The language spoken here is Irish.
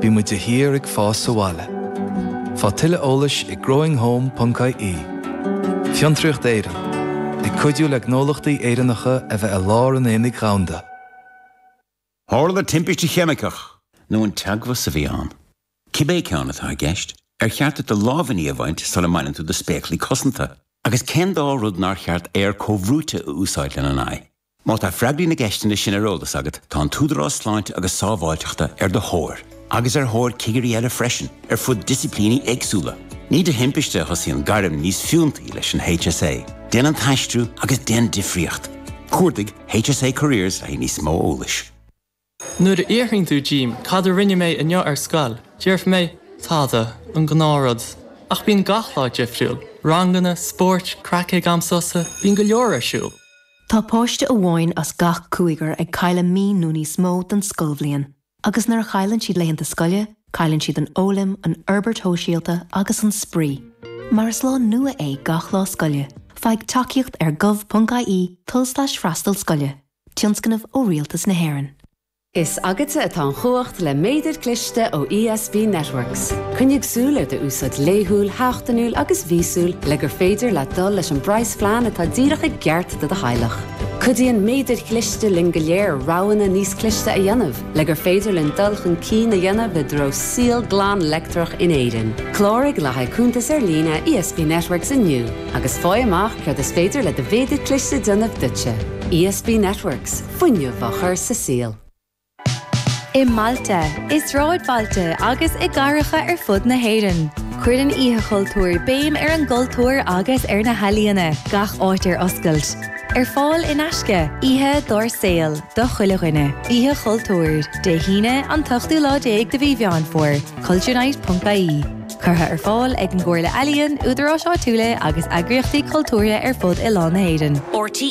Bímid de shíor ag fás abhaile. Faigh tuilleadh eolais ag growinghome.ie. Fiontraíocht Éireann, ag cuidiú le gnólachtaí Éireannacha a bheith i lár an aonaigh dhomhanda. Tharla timpiste cheimiceach. nó an teagmhas a bhí ann. Cibé ceann atá i gceist, ar cheart duit do lámhainní a bhaint sula mbaineann tú do spéaclaí cosanta? Agus cén dá rud nár cheart aer comhbhrúite a úsáid lena n-aghaidh? Má tá freagraí na gceisteanna sin ar eolas agat, tá an tÚdarás Sláinte agus Sábháilteachta ar do thóir, agus ar thóir cigirí eile freisin, ar fud disciplíní éagsúla. Ní de thimpiste a thosaíonn gairm níos fiúntaí leis an HSA. Déan an t-aistriú agus déan difríocht. Cuardaigh HSA Careers le haghaidh níos mó eolais. Nuair a fhiafraíonn tú díom cad a rinne mé inniu ar scoil, déarfaidh mé, tada, an gnáth rud. Ach bíonn gach lá difriúil, ranganna, spóirt, craic ag am sosa, bíonn go leor ar siúl. Tá páiste amháin as gach cúigear ag cailliúint mí nó níos mó den scoilbhliain agus nuair a chailleann siad laethanta scoile, cailleann siad an fhoghlaim, an fhorbairt shóisialta agus an spraoi. Mar is lá nua é gach lá scoile, faigh tacaíocht ar gov.ie, tulslais freastal scoile. Tionscnamh ó Rialtas na hÉireann. Is agatsa atá an chumhacht le méadar cliste ó ESB Networks. Coinnigh súil ar do úsáid laethúil, sheachtainiúil agus mhíosúil le gur féidir leat dul leis an bpraghasphlean atá díreach i gceart do do theaghlach. Cuidíonn méadair chliste linn go léir roghanna níos cliste a dhéanamh le gur féidir linn dul chun cinn a dhéanamh i dtreo saol glan leictreach in Éirinn. Cláraigh le haghaidh cuntas ar líne ESB Networks inniu agus faigh amach céard is féidir le do mhéadar cliste a dhéanamh duitse. ESB Networks, fuinneamh á chur sa saol. I mbailte, i sráidbhailte agus i gcathracha ar fud na hÉireann, cuireann Oíche Chultúir béim ar an gcultúr agus ar na healaíona, gach áit ar oscailt. Ar fáil in aisce, oíche dár saol, do chuile dhuine. Oíche Chultúir, Dé hAoine, an t-ochtú lá déag de mhí Mheán Fómhair, culturenight.ie. Curtha ar fáil ag an gComhairle Ealaíon, údaráis áitiúla agus eagraíochtaí cultúrtha ar fud oileán na hÉireann. RTÉ